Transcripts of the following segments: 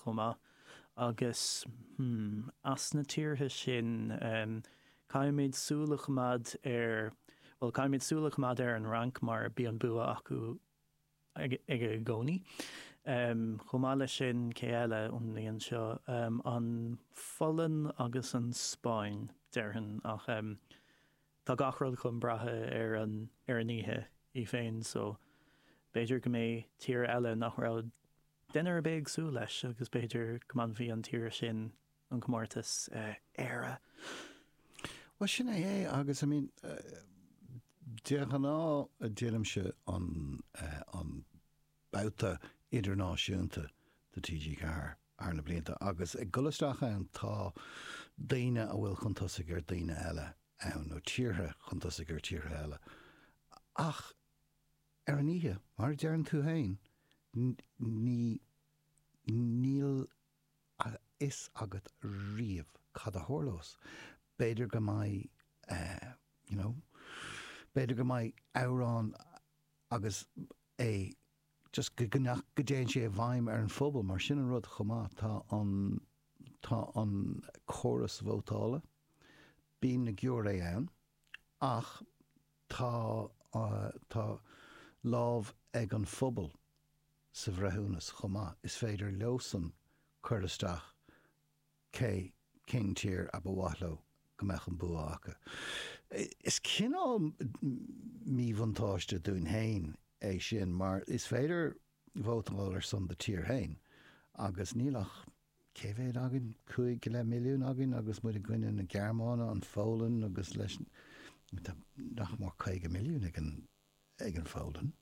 chomh maith. Agus, hmm, as na tíortha sin, caithfimid súil a choimeád ar, bhuel, caithfimid súil a choimeád ar an Fhrainc mar bíonn bua acu aige i gcónaí. Chomh maith leis sin, cé eile ón mbliain seo, an Pholainn agus an Spáinn, déarfainn. Ach tá gach rud chun breatha ar an oíche í féin, so b'fhéidir go mbeidh tír eile nach raibh Duine ar bith ag súil leis, agus b'fhéidir go mbainfidh an tír sin an comórtas, Éire. Bhuel, sin é é agus, I mean, de ghnáth deinimse an, an babhta idirnáisiúnta do TG4 thar na blianta agus ag dul isteach ann tá daoine a bhfuil chun tosaigh ar dhaoine eile ann nó tíortha chun tosaigh ar thíortha eile ach, Ar an oíche, mar a deireann tú féin, ní, níl a fhios agat riamh cad a tharlós. B'fhéidir go mbeidh, you know, b'fhéidir go mbeidh amhrán agus é just go, go, nach, go dtéann sé i bhfeidhm ar an phobal, mar sin an rud chomh maith. Tá an, tá an córas vótála, bíonn an giúiré ann, ach. Tá, tá lámh ag an phobal sa bhreithiúnas chomh maith. Is féidir leosan cur isteach cé, cén tír a ba mhaith leo go mbeadh an bua acu. Is cineál míbhuntáiste dúinn féin é sin mar is féidir vótáil ar son do tír féin agus níl ach, cé mhéad againn, cúig go leith milliún againn agus muid i gcoinne na Gearmáine, an Pholainn agus leis tá nach mór caoga milliún ag an ag an Pholainn,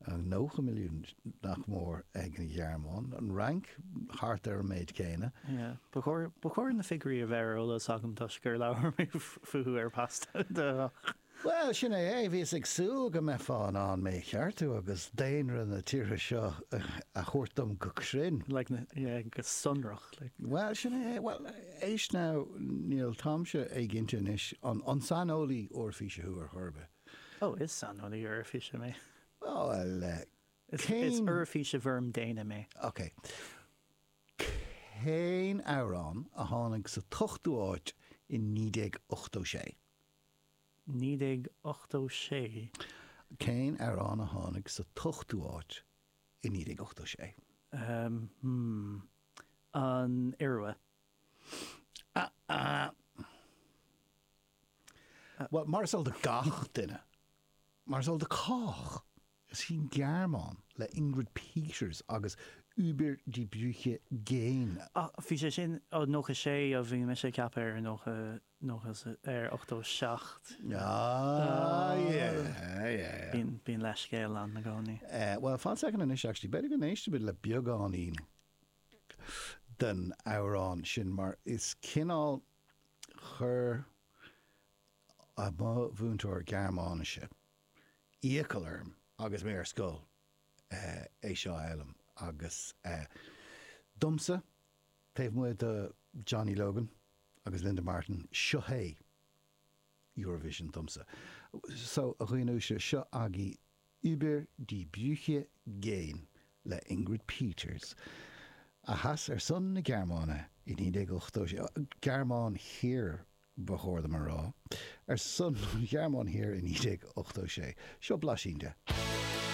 nócha milliún nach mór ag an Ghearmáin, an Fhrainc thart ar an méid céanna. Yeah. Ba chóir ba chóir na figiúirí a bheith ar eolas agam toisc gur labhair mé fúthu ar Pasta. Bhuel, sin é é. Bhíos ag súil go mbeifeá in ann mé a cheartú agus daonra na tíortha seo a thabhairt dom go cruinn. Like, yeah, go sonrach, like. Bhuel, sin é é. Bhuel, éist now, níl táimse cinnte anois, an, an saineolaí Eoraifíse thú ar chor ar bith? Oh, is saineolaí Eoraifíse mé. Bhuel, eh, cén. Is Eoraifíse i bhfoirm daonna mé. OK. Cén amhrán a tháinig sa t-ochtú áit i 1986? 1986. Cén amhrán a tháinig sa t-ochtú áit i 1986? Hm, an Iorua. Bhuel, mar is eol do gach duine, mar is eol do chách, Is í an Ghearmáin, le Ingrid Peters agus Über die Brücke gehen. Ach bhí sé sin, ó ochtó sé, ó bhí mise ag ceapadh ar nócha, nócha, ar ochtó seacht. Bíonn leithscéal ann i gcónaí. Bhuel, fan soicind anois actually, b'fhéidir go n-éistfimid le beagáinín den amhrán sin, mar is cineál, chuir mo mhúinteoir Gearmáinise, iachall orm agus mé ar scoil é seo a fhoghlaim agus domsa, taobh amuigh de Johnny Logan agus Linda Martin, seo é Eurovision domsa. So, a dhaoinuaisle, seo agaibh Über die Brücke gehen le Ingrid Peters, a sheas ar son na Gearmáine i 1986, Gearmáin Thiar ba chóir dom a rá, ar son an Ghearmáin Thiar i 1986. Seo blaisín de.